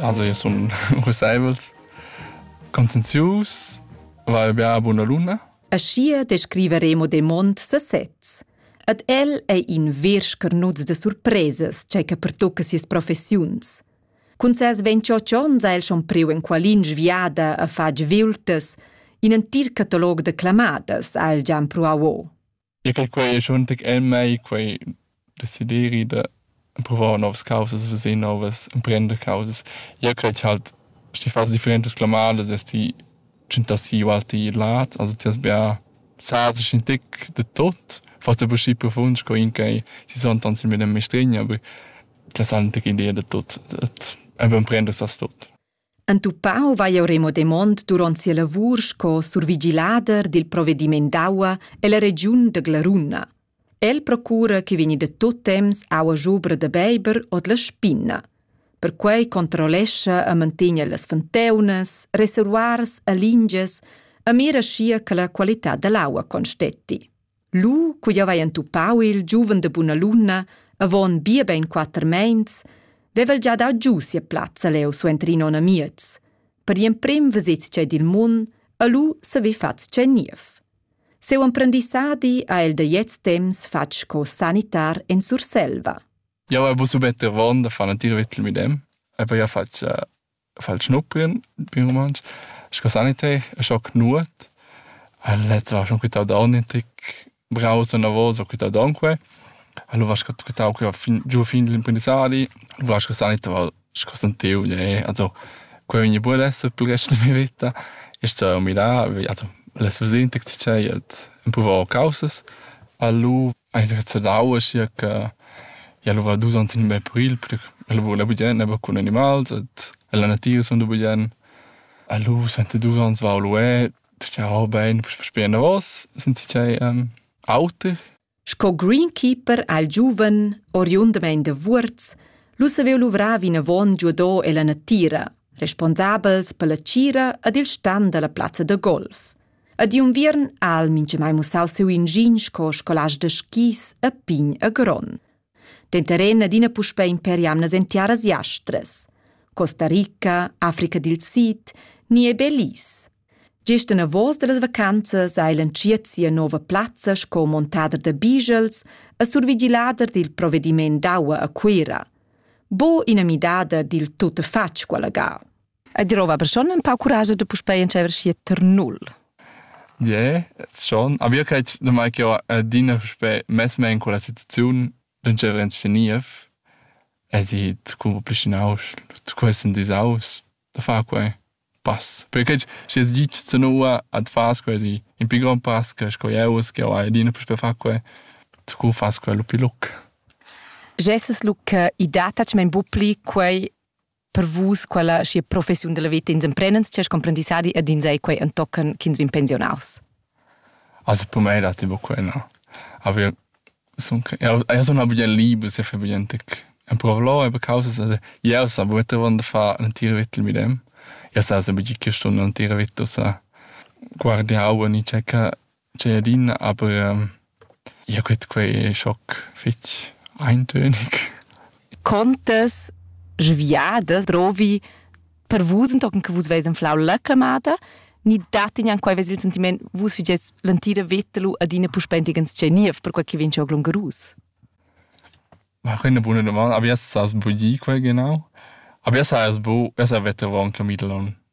Also io sun rusaivels, conscienzius, vai bia buna luna. Aschia descriveremo de mond sesez. Ad el ei in vers carnuts de surpresas, cei che pertocca sias professiuns. Cun ses ventioc onns ha el schon priu en qualin sviada a fag viultas, in entir catalog de clamadas ha el già pruau o. Ja che quai es schon tic el mei quai desideri da pruvar novas causas, veser novas, emprender causas. Jeu cret cha'l schi fast differentas clamadas es ti tschentassi ualti lad, also ti has bia sazes in tic da tot, forsa be schi profund sco in ch'ei si son tants il medem mistregn, aber ti has anc tic idea da tot, dad emprender sas tot. Entupau vai jeu Remo Demont duront sia lavur sco survigilader dil provvediment d'aua ella regiun da Glaruna. El procura che vegni da tut temps aua schubra da beiber ord la spinna. Perquei controllescha e mantegna las fonteunas, reservoirs e lingias e mira schia che la qualità dall'aua constetti. Lu, cu jau hai entupau il giuven da buna luna, avon bia bein quater meins, vevel gia dau giu sia plazza leu suenter in onn amiez. Per gl'emprem vesets tschei dil mund e lu saver fatg tschei niev. Seu emprendissadi ha el da gliez temps fatg sco sanitar en Surselva. Jau hai bu subet ervon da far natir vitl midem e poi ha fatg uh, Fa'l schnuppien, bin rumantsch, sco saniter e scho cnuot. El het lascho quità d'aun in tic browser enavos, ho quità d'aunque. El ho lascho quità que fin giù fin l'imprendissadi, ho lascho saniter sco sentiu, also quei vegni buc ad esser pil rest da mia vita. Io sto mirare, also las vesin tec tschei et empruvar caussas. A lu Ais rezzadau, aschia che igl ova dus onns in bel puril, el vula bugien aber cun animals et ella natira sun da bugien. Lu senta dus onns vau lué, tgau bein sper enavos, sind si tgei auter. Sco greenkeeper al giuven, oriundamein da Vuorz, lu saveva luvrar vinavon giudò ella natira, responsabels per la tgira ed il stan dalla plazza da golf. A di unviern ha el minchamai mussau siu ingin sco scolast da skis a pign e gron. Denter en adina puspei imperi amnas en tiaras jastras. Costa Rica, Africa dil Sid, ni e Belize. Gest anavos dallas vacanzas ha el entschiet sia nova plazza sco montader da bigels e survigilader dil provediment d'aua a Cuira. Bo ina midada dil tuttafatg quella ga. E drova persun en pau curage de puspei entscheiver schi ter null. Je, schon. Aber io cred da mai che io adina puspei mess me in quella situaziun d'entscheiver en sceniev e si zu complicinaus, zu quesen disaus, da far quei pass. Perché schi es gitsch zu nua ad fas quasi in pi grand pass che sco eu es che ho adina puspei far quei, zu fas quei lu pi luc. Gesses lu che i dat tac mein bu pli quei per vus quella schi professiun della vita ins emprendens c'è comprendissadi ed ins ei quei entochen ch'ins vin pensionaus also per me dati bo quella aber son ja sono bien liebe se für bien tec en provlo e be causas also ja sa bu te wanda fa ein tier vittel mit dem ja sa se bi che stunde ein tier vittel sa guardi hauen i checca Tgei adina, aber ja gut, quei ei schoc fetg eintönig. Contas sviadas drovi per vus entochen che vus veis anflau la clamada, ni dat igl quei ves il sentiment vus figies l'entira veta lu adina puspei entiegens tgei niev, perquei che vegn schau glungerus? Ma quei è eine buona domanda. Aber jas has budì quai genau? Aber jas has bu, jas ha vetter avon Camillon.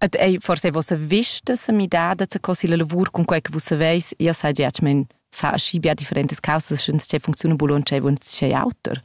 Et ei forse vossa vista se midada zu cossi la lavur con quei che vus saveis, io sai gia che men fa aschi bia differentes causas, schens che funziona bul und che und che auter.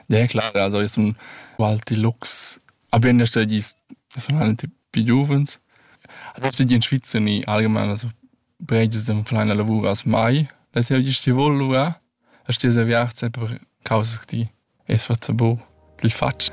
Ja klar, also ist ein Wald Deluxe. Aber in der Stadt ist personalmente più giovens. Also ich in Schweiz in allgemein also breites dem kleiner Lavur als mai. Das ja ist die Wollura. Das ist diese Wert einfach Causa die es was bo, die faccio.